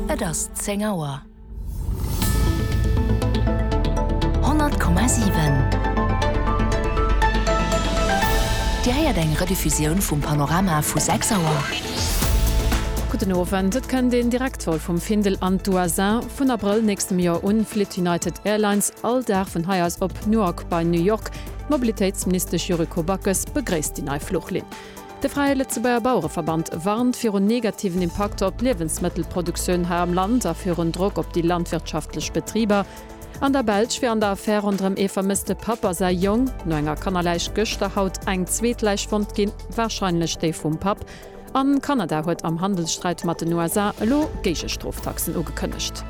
Et ass 10 Auer. 100,7 Dir héiert eng Rediffusioun vum Panorama vu 6 Auer. Gudden Owend. Et kënnt een Direktvol vum Findel an d'USA. Vun Abrëll nächstem Joer un flitt United Airlines all Dag vun hei aus op Newark bei New York. D'Mobilitéitsministesch Yuriko Backes begréisst déi nei Fluchlinn. De Fräie Lëtzebuerger Bauereverband warnt virun negativen Impakter op d'Liewensmëttelproduktioun hei am Land a virun Drock op déi landwirtschaftlech Betriber. An der Belsch wier an der Affär ronderëm ee vermësste Papp a säi Jong no enger Kannerläich gëschter haut eng zweet Läich fonnt ginn, warscheinlech déi vum Papp. An Kanada huet am Handelssträit mat den USA elo Géigestroftaxen ugekënnegt.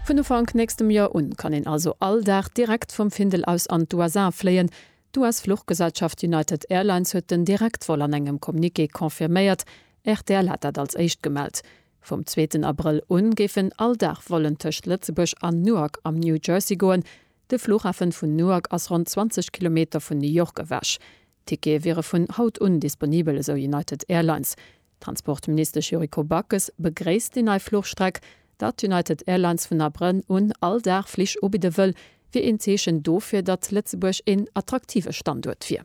Vun Ufank nächstem Joer un kann een also all Dag direkt vum Findel aus an d'USA fléien. D'US-Fluchgesellschaft United Airlines huet den Direktvol an engem Communiqué confirméiert, rtl hat dat als éischt gemellt. Vum zweeten Abrëll u géifen all Dag Vollen tëscht Lëtzebuerg an Newark am New Jersey goen. De Flughafen vun Newark ass ronn 20 Kilometer vun New York ewech. D'Tickete wiere vun haut un disponibel, esou United Airlines. D'Transportministesch Yuriko Backes begréisst déi nei Fluchstreck. Datt United Airlines vun Abrënn un all Dag Flich ubidde wëll, wier een Zeechen dofir, datt Lëtzebuerg een attraktive Standuert wier.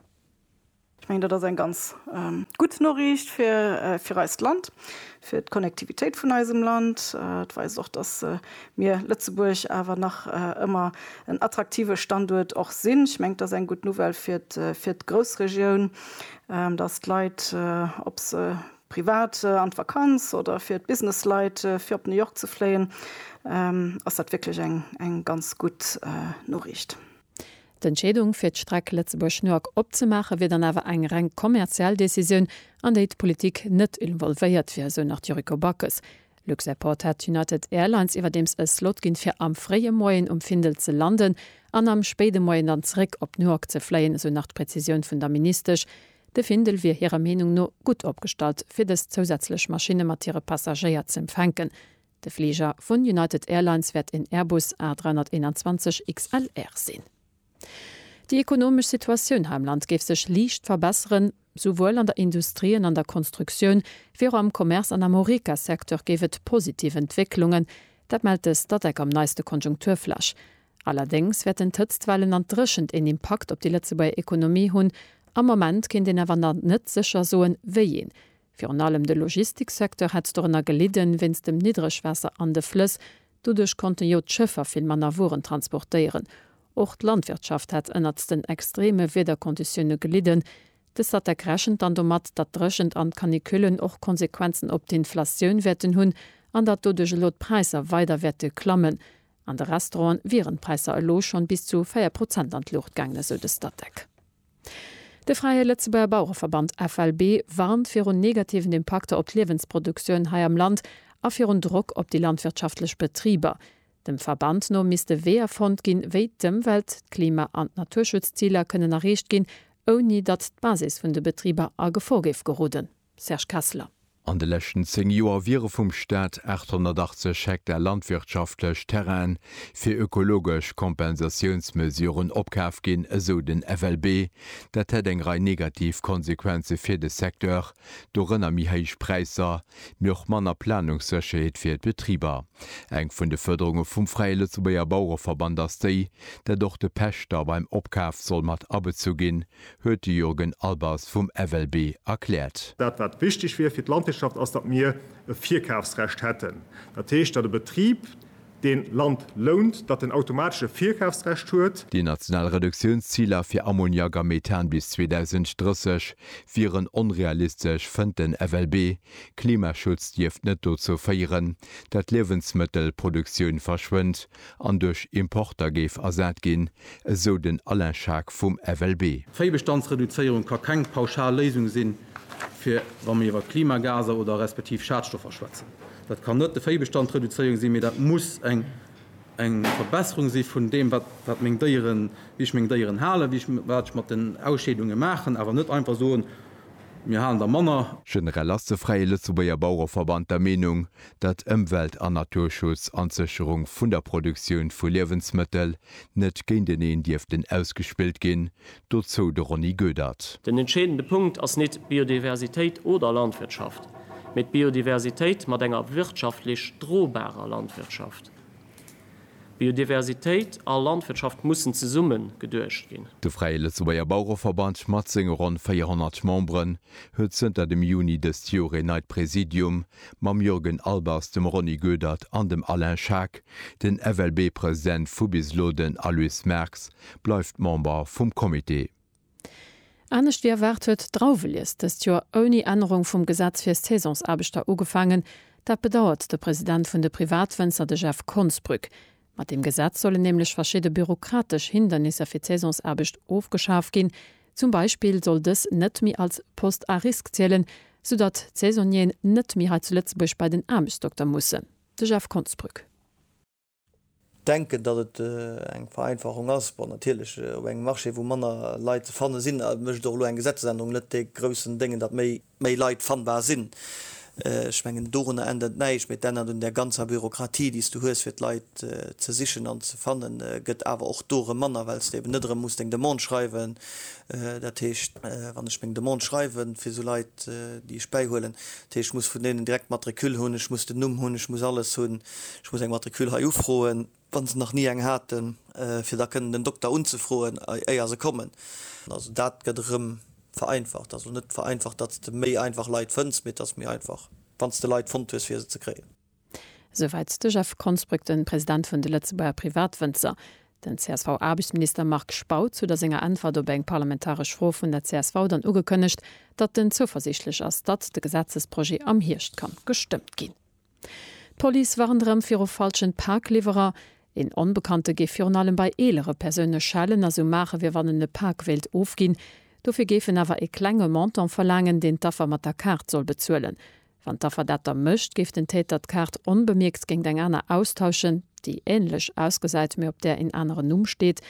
Ech mengen, dat ass eng ganz gutt Noriicht fir eist Land, fir d'Connectivitéit vun eisem Land. Et weist och, datt mir Lëtzebuerg awer nach ëmmer en attraktive Standuert och sinn. Ech mengen, et ass eng gutt Nouvelle fir d'Groussregioun. dass d'Leit, ob se privat an d'Vakanz oder fir d'Businessleit, fir op New York ze fléien, ass dat wierklech eng ganz gutt Noriicht. D'Entscheedung, fir d'Streck Lëtzebuerg-New York opzemaachen, wier dann awer eng reng kommerziell Decisioun, an déi d'Politik net involvéiert wier, esou nach d'Yuriko Backes. Luxairport hat United Airlines iwwerdeems e Slot ginn, fir am fréie Moien um Findel ze landen an am spéide Moien dann zeréck op Newark ze fléien, esou nach d'Prezisioun vun der Ministesch. De Findel wier hirer Meenung no gutt opgestallt, fir dës zousätzlech Maschinne mat hire Passagéier z'empfänken. De Fliger vun United Airlines wäert een Airbus A321 XLR sinn. Déi ekonomesch Situatioun hei am Land géif sech liicht verbesseren. Souwuel an der Industrie an an der Konstruktioun, wéi och am Commerce an am Horeca-Secteur géif et positiv Entwécklungen. Dat mellt de Statec am neiste Konjunkturflash. Allerdéngs wäerten d'Hëtztwellen an d'Dréchent een Impakt op déi Lëtzebuerger Ekonomie hunn. Am Moment kéint een awer nach net sécher soen, wéi een. Virun allem de Logistiksecteur hätt dorënner gelidden, wéinst dem Niddregwaasser an de Flëss. Doduerch konnten jo d'Schëffer vill manner Wueren transportéieren. Och d'Landwirtschaft hätt ënnert den extreme Wiederkonditioune gelidden. De Statec rechent dann domat, datt d'Dréchent an d'Canicullen och Konsequenzen op d'Inflatioun wäerten hunn an datt doduerch elo d'Präisser weider wäerte klammen. An de Restauranten wieren d'Präisser elo schonn bis zu 4 Prozent an d'Luucht gaangen, esou de Statec. De Fräie Lëtzebuerger Bauereverband, FLB, warnt virun negativen Impakter op d'Liewensproduktioun hei am Land a virun Drock op déi landwirtschaftlech Betriber. Dem Verband no misste Weeër fonnt ginn, wéi d'Ëmwelt-, d'Klima an d'Naturschutzziler kënnen erreecht ginn, ouni datt d'Basis vun de Betriber a Gefor géif geroden. Serge Kessler. An de leschten 10 Joer wiere vum Staat 880 Hektar landwirtschaftlech Terrainen fir ökologesch Kompensatiounsmesuren opkaf ginn, esou den FLB. Dat hätt eng Rei negativ Konsequenze fir de Secteur, dorënner méi héich Präisser, mee och manner Planungssécherheet fir d'Betriber. Eng vun de Fuerderunge vum Fräie Lëtzebuerger Bauereverband ass déi, dat och de Pächter beim Opkaf soll mat abezu ginn. huet de Jurgen Albers vum FLB erkläert. Dat wat wichteg wier fir d'Landwirtschaft ass, datt mir e Virkafsrecht hätten. Dat heescht, datt e Betrib deen Land lount, datt en automatesch e Virkafsrecht huet. Déi national Reduktiounsziler fir Ammoniak a Methan bis 2030 wieren onrealistesch, fënnt den FLB. Klimaschutz dierft net dozou féieren, datt d'Liewensmëttelproduktioun verschwënnt, an duerch Importer géif ersat ginn, esou den Alain Schaack vum FLB. D'Véibestandsreduzéierung ka keng pauschal Léisung sinn, fir wa mir iwwer Klimagaser oder respektiv Schadstoffer schwätzen. Dat kann net de Véibestand reduzéierung sinn, mee dat muss eng Verbesserung si vun deem, wat meng Déieren, wéi ech meng Déieren halen, wéi ech, wat ech mat den Ausscheedunge maachen, awer net einfach soen, mir halen der manner. Generell ass de Fräie Lëtzebuerger Bauereverband der Meenung, datt Ëmwelt an Naturschutz an d'Sécherung vun der Produktioun vu Liewensmëttel net géinteneen dierften ausgespillt ginn, dozou de Ronny Goedert. Den entscheedende Punkt ass nit Biodiversitéit oder Landwirtschaft, mee d'Biodiversitéit mat enger wirtschaftlech drobarer Landwirtschaft. Biodiversitéit a Landwirtschaft mussen zesumme geduecht ginn. De Fräie Lëtzebuerger Bauereverband mat senge ronn 400 Memberen huet zënter dem Juni dëst Joer een neit Präsidium, mam Jürgen Albers, dem Ronny Goedert an dem Alain Schaack. Den FLB-President vu bis elo, den Aloyse Merx, bleift Member vum Comité. Anescht wéi erwaart huet d'Drauwelies dëst Joer ouni Ännerung vum Gesetz fir Saisonsaarbechter ugefaangen. Dat bedauert de President vun de Privatwënzer, de Jeff Konsbrück. Mat deem Gesetz sollen nämlech verschidde bürokratesch Hindernisser fir d'Saisonsaarbecht ofgeschaf ginn. Zum Beispill soll dës net méi als Poste à risque zielen, sou datt d'Saisonnieren net méi hei zu Lëtzebuerg bei den Aarbechtsdokter mussen. De Jeff Konsbrück. Denken, datt et eng Vereinfachung ass. Bon, natierlech, op engem Marché, wou manner Leit ze fanne sinn, mécht och elo eng Gesetzesännerung net dee groussen Déngen, datt méi méi Leit fannbar sinn. Ech mengen, dorunner ännert et näischt, mee et ännert un där ganzer Bürokratie, déi s du hues, fir d'Leit ze sichen an ze fannen, gëtt awer och do erëm manner, well s de eben net erëm muss deng Demande schreiwen. Dat heescht, wann ech meng Demande schreiwe fir esou Leit, déi ech bäihuelen, dat heescht, ech muss vun deenen direkt d'Matricule hunn, ech muss den Numm hunn, ech muss alles hunn. Ech muss eng Matricule hei ufroen, wann se nach ni eng haten, fir da kënnen den Dokter unzefroen, éier se kommen. Also dat gëtt erëm vereinfacht. Also net vereinfacht, datt s de méi einfach Leit fënns, mee et ass méi einfach, wann s de Leit fonnt hues, fir se ze kréien. Esouwäit de Jeff Konsbrück, de President vun de Lëtzebuerger Privatwënzer. Den CSV-Aarbechtsminister Marc Spautz huet a senger Äntwert op eng parlamentaresch Fro vun der csv dann ugekënnegt, datt en zouversiichtlech ass, datt de Gesetzesprojet am Hierscht ka gestëmmt ginn. D'Police warnt erëm viru falschen Pakliwwerer. Een Onbekannte géif virun allem bei eelere Persoune schellen a sou maachen, wéi wann en e Pak wéilt ofginn. Dofir géif en awer e klenge Montant verlaangen, deen d'Affer mat der Kaart soll bezuelen. Wann d'Affer dat da mécht, géif den Täter d'Kaart onbemierkt géingt eng aner austauschen, déi änlech ausgesäit, mee op där een aneren Numm steet.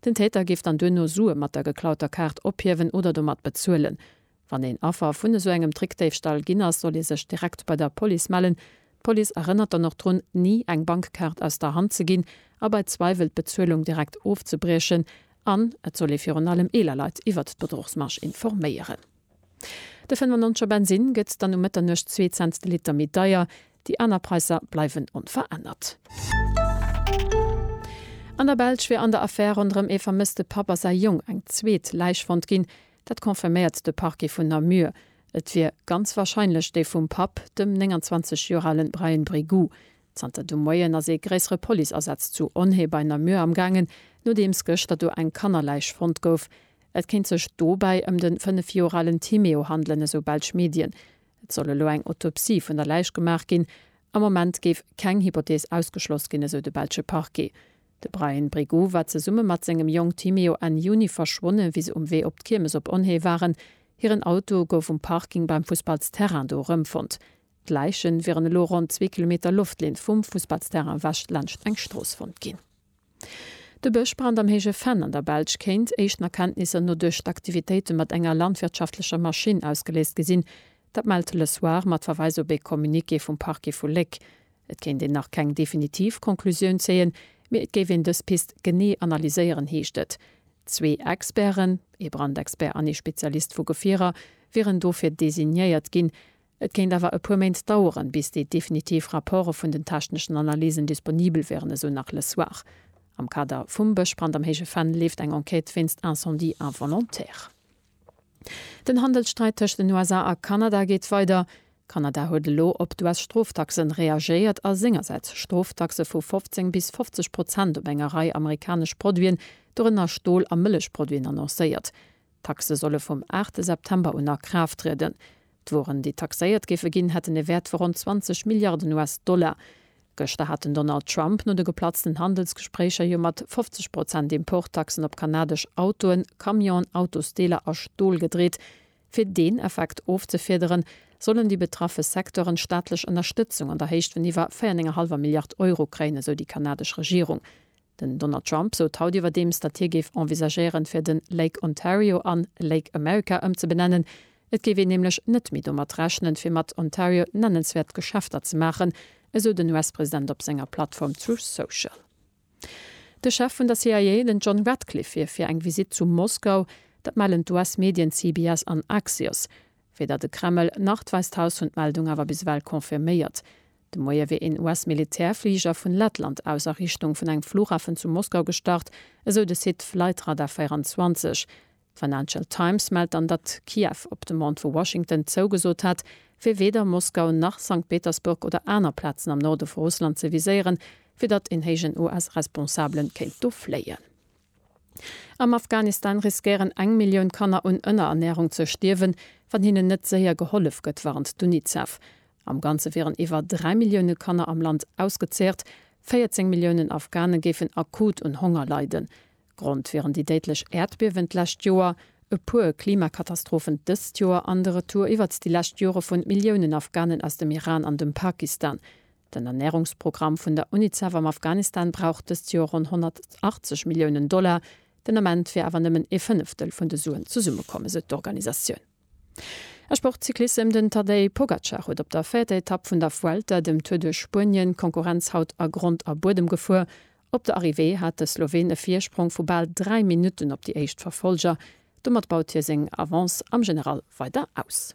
Den Täter géif dann duerno Sue mat der geklauter Kaart ophiewen oder domat bezuelen. Wann een Affer vun esou engem Trickdéifstall ginn ass, soll ee sech direkt bei der Police mellen. D'Police erënnert dann och drun, ni eng Bankkaart aus der Hand ze ginn a bei Zweiwel d'Bezuelung direkt ofzebriechen. An et soll ee virun allem eeler Leit iwwert d'Bedruchsmarge informéieren. De 95 er Bensinn gëtt dann um Mëtternuecht zwee Cents de Liter méi deier. Déi aner Präisser bleiwen onverännert. An der Belsch wier an der Affär ronderëm ee vermësste Papp a säi Jong eng zweet Läich fonnt ginn. Dat confirméiert de Parquet vun Namur. Et wier ganz warscheinlech déi vum Papp, dem 29 Joer ale Brian Brégou. Zanter de Moien ass ee gréissere Policeasaz zu Onhé bei Namur am Gaangen, nodeems gëschter do eng Kannerläich fonnt gouf. Et kéint sech dobäi ëm de 5 Joer alen Timéo handelen, esou belsch Medien. Et soll elo eng Autopsie vun der Läich gemaach ginn. Am Moment géif keng Hypothees ausgeschloss ginn, esou de belsche Parquet. De Bryan Brigoux war zesumme mat sengem Jong Timeo Enn Juni verschwonnen, wéi se um Wee op d'Kiermes op Onhée waren. Hiren Auto gouf um Parking beim Fussballsterrain do erëmfonnt. D'Läichen wieren elo ronn zwee Kilometer Loftlinn vum Fussballsterrain ewech laanscht eng Strooss fonnt ginn. De Bëschbrand am Héije Venn an der Belsch kéint, éischten Erkenntnisser no, duerch d'Aktivitéite mat enger landwirtschaftlecher Maschinn ausgeléist gi sinn. Dat mellt Le Soir mat Verweis op ee Communiqué vum Parquet vu Léck. Et kéint een nach keng definitiv Conclusioun zéien, mee et géif een dës Pist genee analyséieren, heescht et. Zwee Experten, ee Brandexpert an ee Spezialist vu Gefierer, wieren dofir designéiert ginn. Et kéint awer e puer Méint daueren, bis déi definitiv Rapporte vun den techneschen Analysen disponibel wieren, esou nach Le Soir. Am Kader vum Bëschbrand am Héije Venn leeft eng Enquête wéinst Incendie involontaire. Den Handelssträit tëscht den USA a Kanada geet weider. Kanada huet elo op d'US-Stroftaxen reagéiert a sengersäits Stroftaxe vu 15 bis 50 Prozent op enger Rei amerikanesch Produiten, dorënner Stol a Mëllechproduiten, annoncéiert. D'Taxe solle vum 8 September un a Kraaft trieden. D'Wueren, déi taxéiert géife ginn, hätten e Wäert vu ronn 20 Milliarden US-Dollar. Gëschter hat den Donald Trump no de geplatzten Handelsgespréicher jo mat 50 Prozent Importtaxen op kanadesch Autoen, Camionen, Autosdeeler a Stol gedreet. Fir deen Effekt ofzefiederen, sollen déi betraffe Secteuren staatlech Ënnerstëtzung an der Héicht vun iwwer 4,5 Milliard Euro kréien, esou déi kanadesch Regierung. Den Donald Trump sot haut iwwerdeems, datt hie géif envisagéieren, fir de Lake Ontario an Lake America ëmzebenennen. Et géif een nämlech net méi domat rechnen, fir mat Ontario nennenswäert Geschäfter ze maachen, esou den US-President op senger Plattform Truth Social. De Chef vun der CIA, den John Ratcliffe, wier fir eng Visitt zu Moskau. Dat mellen d'US-Medien CBS an Axios. Weder de Kreml, nach d'Wäisst Haus hunn d'Meldung awer bis ewell confirméiert. De Moie wier een US-Militärfliger vun Lettland aus a Richtung vun engem Flughafen zu Moskau gestart, esou de Site Flightradar 24. D'Financial Times mellt dann, datt Kiew op Demande vu Washington zougesot hat, fir weder Moskau nach Sankt Petersburg oder aner Plazen am Norde vu Russland ze viséieren, fir datt een héijen US-Responsabele kéint do fléien. Am Afghanistan riskéieren eng Millioun Kanner un Ënnerernärung ze stierwen, wann hinnen net séier gehollef gëtt, warnt d'UNICEF. Am Ganze wieren iwwer dräi Millioune Kanner am Land ausgezeecht. 14 Milliounen Afghane géifen akut un Honger leiden. Grond wieren déi déidlech Äerdbiewen d'lescht Joer, e puer Klimakatastrophen dëst Joer an de Retour iwwert déi lescht Jore vu Milliounen Afghanen aus dem Iran an dem Pakistan. Den Ernärungsprogramm vun der Unicef am Afghanistan brauch dëst Joer ronn 180 Milliounen Dollar. Den Ament wier awer nëmmen ee Fënneftel vun de Suen zesummekomm, esou d'Organisatioun. A Sport, Cyclissem, Den Tadej Pogacar huet op der véierter Etapp vun der Vuelta, dem Tour de Spuenien, d'Konkurrenz haut a Grond a Buedem gefuer. Op der Arrivée hat de Sloween e Virsprong vu bal 3 Minutten op déi éischt Verfolger. Domat baut hie seng Avance am General weider aus.